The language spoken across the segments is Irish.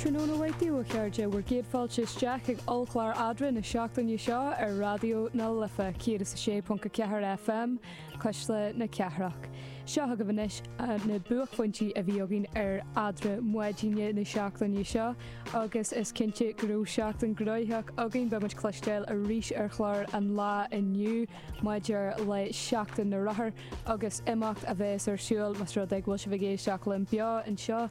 Tráthnóna maith daoibh a chairde, bhur gcéad fáilte isteach chuig ollchlár Eadra na seachtaine seo ar Raidió na Life 106.4 FM, cuisle na cathrach. Seo agaibh anois na buaicphointí a bhí againn ar Eadra Maidine na seachtaine seo agus is cinnte go raibh seachtain gnoitheach againn. Beidh muid cloisteáil arís ar chlár an lá inniu maidir le Seachtain na Rothar agus imeacht a bheas ar siúl más rud é go bhfuil sibh ag éisteacht linn beo anseo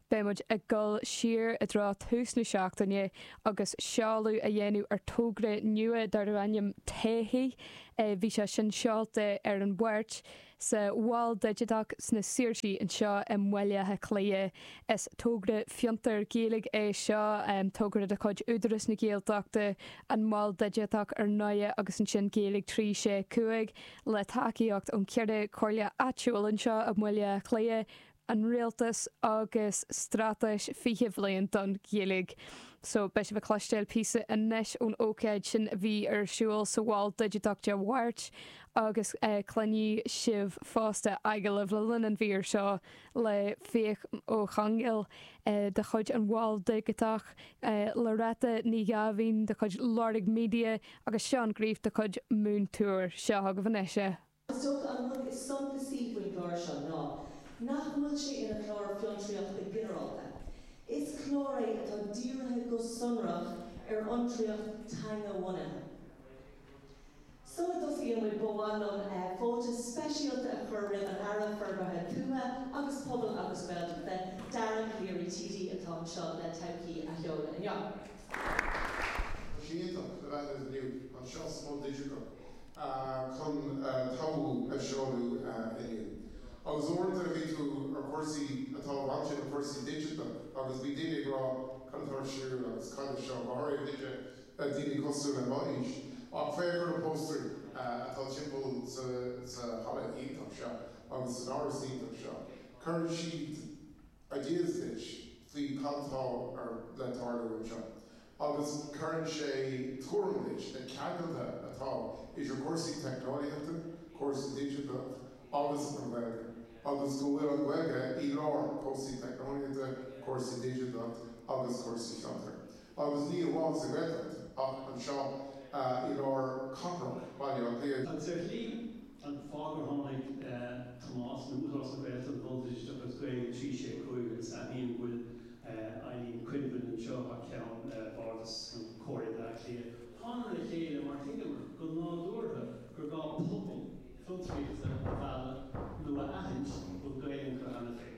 Beidh muid ag dul siar i dtreo tús na seachtaine agus seoladh a dhéanamh ar togra nua darb ainm 'Todhchaí' Bhí sé sin seolta ar an Mháirt sa Mhol Digiteach sna Saoirsí anseo i mBaile Átha Cliath. Is togra fiontair Ghaeilge é seo, togra de chuid Údarás na Gaeltachta, an Mol Digiteach ar ndóigh agus ansin Gaeilge 365 le tacaíocht ón cheithre chomhairle áitiúil anseo i mBaile Átha Cliath, an Rialtas agus Straitéis 20 Bhliain don Ghaeilge. So, beidh sibh ag cloisteáil píosa anois ón ócáid sin a bhí ar siúl sa Mhol Digiteach Dé Mháirt agus cluinfidh sibh fosta agallamh le linn an mhír seo le Fiach Ó Conghaile de chuid an Mhoil Dhigiteach, Loretta Ní Ghabháin de chuid Lorg Media agus Seán Greif de chuid Moontour. Seo agaibh anois é. Is dócha an rud is suntasaí faoin gclár seo ná nach bhfuil sé ina chlár fiontraíochta ginearálta. Is clár é atá dírithe go sonrach ar fhiontraíocht teanga-bhunaithe. Sula dtosaímid ba mhaith liom fáilte speisialta a chur roimh an Aire Forbartha Tuaithe agus Pobail agus Gaeltachta, Dara Calleary TD, atá anseo le Todhchaí a sheoladh inniu. Tá sé iontach go bhfuilimid inniu anseo sa Mol Digiteach chun Todhchaí a sheoladh inniu. Agus uaireanta bhí tú ar chúrsaí atá bainte le cúrsaí digiteacha agus bhí daoine ag rá cad atá ar siúl agus cad é seo, go háirithe duitse, daoine cosúil le mo aois. Ach féach ar na póstaerí atá timpeall sa halla iontach seo agus san áras iontach seo. Cuireann siad. ideas duit faoi cad atá le tarlú anseo agus cuireann sé tuairim duit na ceangailte atá idir cúrsaí teicneolaíochta, cúrsaí digiteacha agus an Ghaeilge agus go bhfuil an Ghaeilge i lár cúrsaí teicneolaíochta, cúrsaí digiteacha agus cúrsaí fiontar. agus ní amháin sa Ghaeltacht ach anseo i lár cathrach Bhaile Átha Cliath. Is é sin an fáth gur tháinig Tomás nó Údarás na Gaeltachta, Bardas agus Gaeilge 365 agus aithním go bhfuil Eileen Quinlivan anseo thar ceann Bhardas nó Comhairle Bhaile Átha Cliath, Tháingamar le chéile mar thuigeamar go nádúrtha gur gá pobal fiontraíochta a mhealladh nó a aithint go bhfuil Gaeilge acu cheana féin.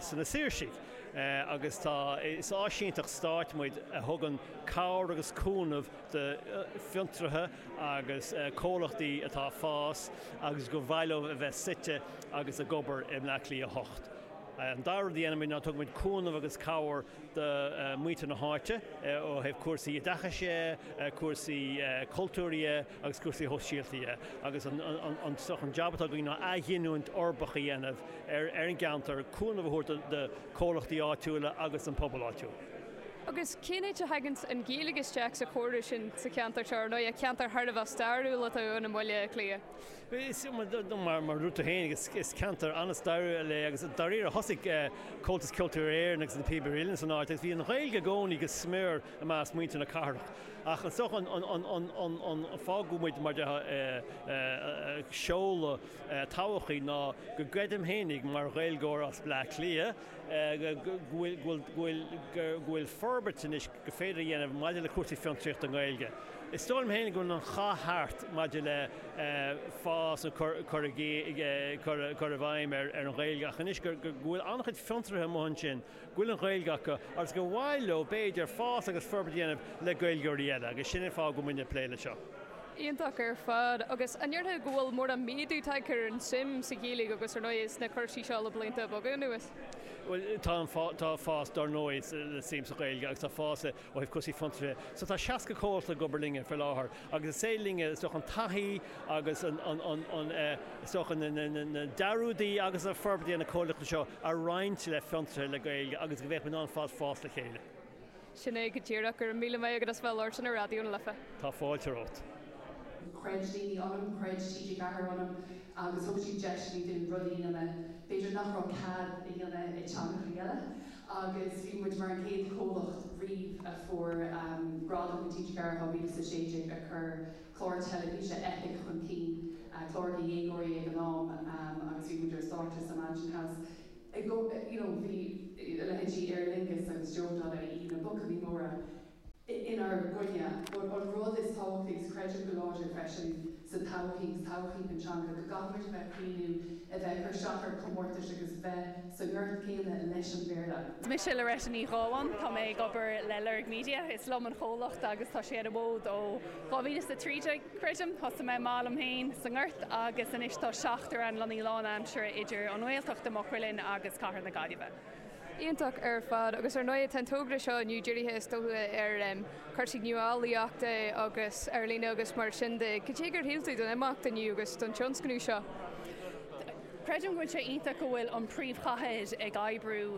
sna Saoirsigh agus tá, is áisínteacht stáit muid a thugann cabhair agus cúnamh do fhiontraithe agus comhlachtaí atá ag fás agus gur mhaith leo a bheith suite agus ag obair i mBleá Cliath 8. An dara rud a dhéanaimid ná tugaimid cúnamh agus cabhair do mhuintir na háite ó thaobh cúrsaí oideachais dhe, cúrsaí cultúir dhe, agus cúrsaí sóisialta dhe, agus an jab atá againn ná athghiniúint uirbeach a dhéanamh ar an gceantar, cúnamh a thabhairt do chomhlachtaí áitiúla agus don phobal áitiúil. Agus cén áit a thagann an Ghaeilge isteach sa scéal sin sa cheantar seo, ar ndóigh, ceantar thar a bheith stairiúil atá ann i mBaile Átha Cliath? Is iomaí, mar a dúirt tú féin, is ceantar an-stairiúil é agus dáiríre thosaigh Comhaltas Ceoltóirí Éireann agus Na Píobairí Uilleann san áit agus bhí an Ghaeilge i gcónaí go smior i measc muintir na cathrach. Ach is dócha an fáth go bhfuil muid mar sheoladh tábhachtach ná go gcreidim fhéinig mar Ghaeilgeoir as Bleá Cliath go bhfuil forbairt anois gur féidir a dhéanamh maidir le cúrsaí fiontraíochta Gaeilge. Is dóigh liom fhéinig go bhfuil an cath thart maidir le fás nó cur i bhfeidhm ar an Ghaeilge ach anois go bhfuil an-chuid fiontraithe amuigh ansin go bhfuil an Ghaeilge acu agus gur mhaith leo, b'fhéidir, fás agus forbairt a dhéanamh le Gaeilgeoirí eile agus sin an fáth go bhfuil muid ag plé leis seo. Iontach ar fad. Agus an ndéarfá go bhfuil mórán méadú tagtha ar an tsuim sa Ghaeilge agus, ar ndóigh, sna cúrsaí seo le blianta beaga anuas? Bhuel, tá fás, dar ndóigh, sa tsuim sa Ghaeilge agus tá fás i Ó thaobh cúrsaí fiontraithe so tá 60 comhlacht ag obair linne faoi láthair agus is maith linne, is dócha, an taithí agus an, is dócha, na dearúdaí agus an forbairt a dhéanann na comhlachtaí seo a roinnt le fiontraithe le Gaeilge agus go mbeidh muid in ann ar fad fás le chéile. Sin é go díreach. Go raibh míle maith agat as bheith ag labhairt linn ar Raidió na Life. Tá fáilte romhat. Chreid daoine ionam, chreid TG4 ionam agus thug siad deiseanna dúinn rudaí a dhéanamh, b'fhéidir, nach raibh cead a dhéanamh i dteangachaí eile. agus bhí muid mar an chéad chomhlacht riamh a fuair gradam in 2016 a chuir clár teilifíse Eipic chun cinn, clár do dhéagóirí ag an am agus bhí muid ar stáitse sa Mansion House you know bhí a leithéidí Aer Lingus agus Joe Donnelly, na buachaillí móra. inár gcoinne, gur an rud is tábhachtaí, agus creidim go láidir freisin sa todhchaí, sa todhchaí don teanga, go gcaithfimid a bheith ag cuimhniú a bheith ag cur isteach ar chomórtais agus bheith sa ngort céanna leis an mBéarla. Mise Loretta Ní Ghabháin, tá mé ag obair le Lorg Media, is liom an comhlacht agus tá sé ar an bhfód ó dhá mhíle is a trí déag, creidim. Thosaigh mé amach liom féin sa nGort agus anois tá seachtar ann, lonnaithe lánaimseartha idir an nGaeltacht i Maigh Cuilinn agus cathair na Gaillimhe. iontach ar fad agus ar ndóigh tá an togra seo inniu dírithe is dócha ar chúrsaí nuálaíochta agus ar líne agus mar sin de. Cad é gur shíl tú don imeacht inniu agus don tionscnamh seo? Creidim go bhfuil sé iontach go bhfuil an príomhchathair ag oibriú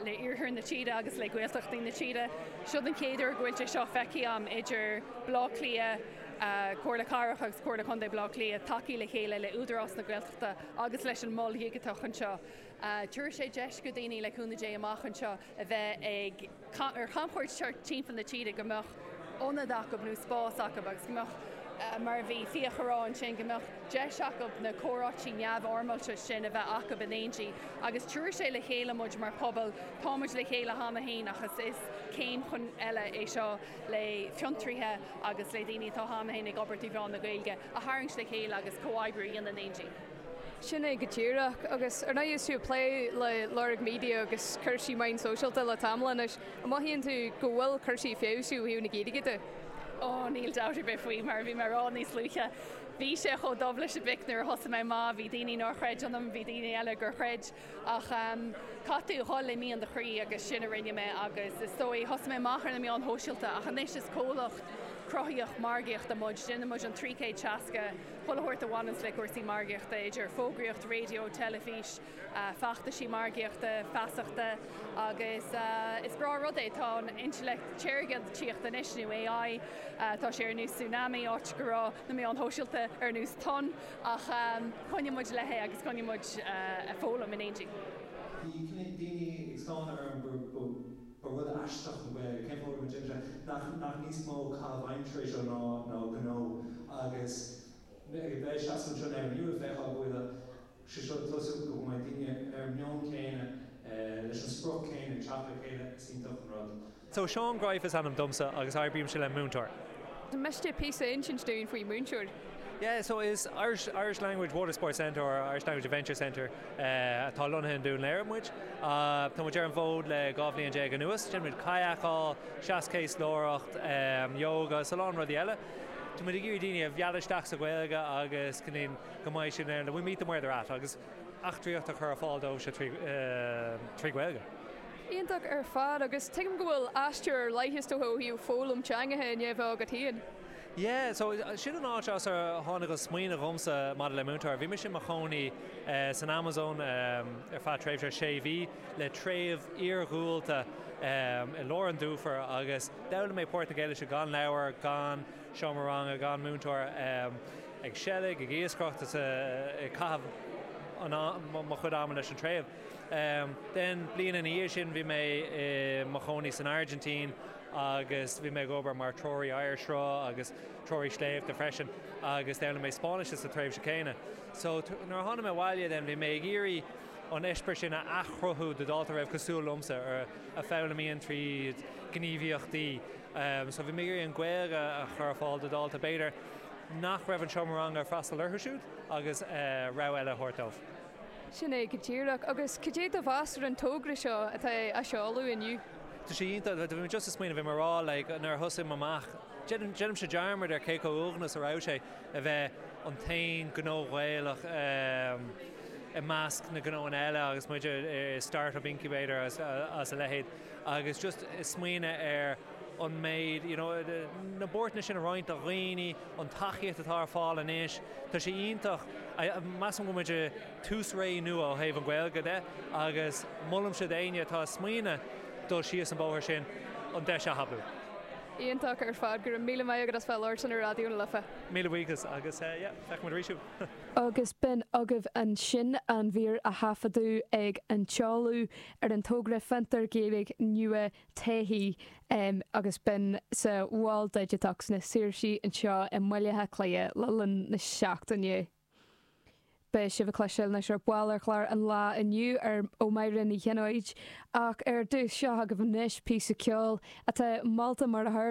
le iarthar na tíre agus le Gaeltachtaí na tíre. Seo é an chéad uair go bhfuil sé seo feicthe agam idir Baile Átha Cliath, Comhairle Cathrach agus Comhairle Contae Bhaile Átha Cliath tagthaí le chéile le Údarás na Gaeltachta agus leis an Mol Digiteach anseo. Tabharfaidh sé deis do dhaoine, le cúnamh Dé, amach anseo a bheith ag ar chamchuairt timpeall na tíre, go mbeadh ionad acu nó spás acu agus go mbeadh, mar a bhí Fiach a rá ansin, go mbeadh deis acu na comhráití neamhfhoirmeálta sin a bheith acu in éindí. Agus tabharfaidh sé le chéile muid mar phobal. Táimid le chéile cheana féin ach is is céim chun eile é seo le fiontraithe agus le daoine atá cheana féin ag obair trí mheán na Gaeilge a tharraingt le chéile agus comhoibriú a dhéanamh in éindí. Sin é go díreach. Agus ar ndóigh is tú ag plé le Lorg Media agus cúrsaí meán sóisialta le tamall anois. An mothaíonn tú go bhfuil cúrsaí ag feabhsú ó thaobh na Gaeilge de? Ó, níl dabht ar bith faoi, mar a bhí mé a rá níos luaithe, bhí sé chomh dubh leis an bpic nuair a thosaigh mé, má bhí daoine nár chreid ionam, bhí daoine eile gur chreid. Ach caithfidh tú a dhul le mian do chroí agus sin a rinne mé agus is dóigh, thosaigh mé amach ar na meáin shóisialta ach anois is comhlacht cruthaitheach margaíochta muid, déanann muid an 360 pull a thabhairt a bhaineanns le cúrsaí margaíochta, idir fógraíocht raidió, teilifís, feachtaisí margaíochta, feasachta agus is breá an rud é, tá an intleacht shaorga ag tíocht anois nó AI, tá sé ar nós tsunami áit go raibh na meáin shóisialta ar nós tonn. Ach coinneoidh muid léi agus coinneoidh muid ag foghlaim in éindí. Bhí cnoic daoine ag stánadh orm, ba rud aisteach an Ghaeilge, cén fáth go raibh muid imithe, nach níos mó caitheamh aimsire é seo ná gnó? Agus mé ag seasamh anseo in Éirinn Nua ag feiceáil go bhfuil sé seo ag tosú, go mbeidh daoine ar an meon céanna, leis an sprioc céanna, ag teacht le chéile, is iontach an rud. So Seán Greif is ainm domsa agus oibrímse le Moontour. Miste píosa insint dúinn faoi Moontour. Yeah, so is Irish Irish Language Water Sports Centre or Irish Language Adventure Centre atá lonnaithe in Dún Laoghaire muid. Tá muid ar an bhfód le dhá bhliain déag anuas. Déanann muid kayakáil, seaschéaslóireacht, yoga, is a lán rudaí eile. Tá muid ag iarraidh daoine a mhealladh isteach sa Ghaeilge agus cinntiú go mbeidh siad in ann, we meet them where they're at, agus eachtraíocht a chur ar fáil dóibhse trí Gaeilge. Iontach ar fad, agus tuigim go bhfuil aistear ar leith ó thaobh foghlaim teangacha i ndiaidh a bheith agat féin. Yeah, so sin an áit as ar tháinig an smaoineamh dhomsa maidir le Moontour. Bhí mise i mo chónaí san Amazon ar feadh tréimhse sé mhí le treibh iargúlta i lár an dufair agus d'fhoghlaim mé Portaingéilis gan leabhar, gan seomra ranga, gan múinteoir, ag seilg, ag iascaireacht, ag caitheamh mo chuid ama leis an treibh. Then an bhliain ina dhiaidh sin bhí mé i mo chónaí san Airgintín agus bhí mé ag obair mar threoraí oighearshruth agus treoraí sléibhte freisin agus d'fhoghlaim mé Spáinnis sa tréimhse chéanna. So nuair a tháinig mé abhaile then bhí mé ag iarraidh an eispéireas sin a athchruthú do dhalta a raibh cosúil liomsa, a fhoghlaimíonn tríd gníomhaíochtaí. So bhí mé ag iarraidh an Ghaeilge a chur ar fáil do dhalta b'fhéidir nach raibh an seomra ranga ag freastal orthu siúd agus rogha eile a thabhairt dóibh. Sin é go díreach. Agus cad é do mheas ar an togra seo atá á seoladh inniu? Tá sé iontach. Bhí mé just ag smaoineadh, bhí mé ag rá like nuair a thosaigh mé amach, déanaimse dearmad ar cé chomh uaigneach a raibh sé a bheith an t-aon ghnó Gaelach i measc na ngnóanna eile agus muid i start-up incubators is a leithéid. agus just ag smaoineadh ar an méid, you know, na buarthanna sin a roinnt le daoine, an tacaíocht atá ar fáil anois, tá sé iontach, measaim go bhfuil muid ag tús ré nua ó thaobh an Ghaeilge de agus molaimse d'éinne atá ag smaoineadh dul síos an bóthar sin an deis a thapú. Iontach ar fad, go raibh míle maith agat as bheith labhairt linn ar Raidió na Life. Míle buíochas agus yeah, feicfidh muid arís thú! Agus b'in agaibh ansin an mhír a thaifeadadh ag an tseoladh. ar an togra Fiontar Gaeilge Nua Taithí agus b'in sa Mhol Digiteach sna Saoirsí anseo i mBaile Átha Cliath le linn na seachtaine. Beidh sibh ag cloisteáil anois ar ball ar chlár an lá inniu ó Mháire Ní Chionaoith ach ar dtús seo agaibh anois píosa ceoil atá molta mar a tharla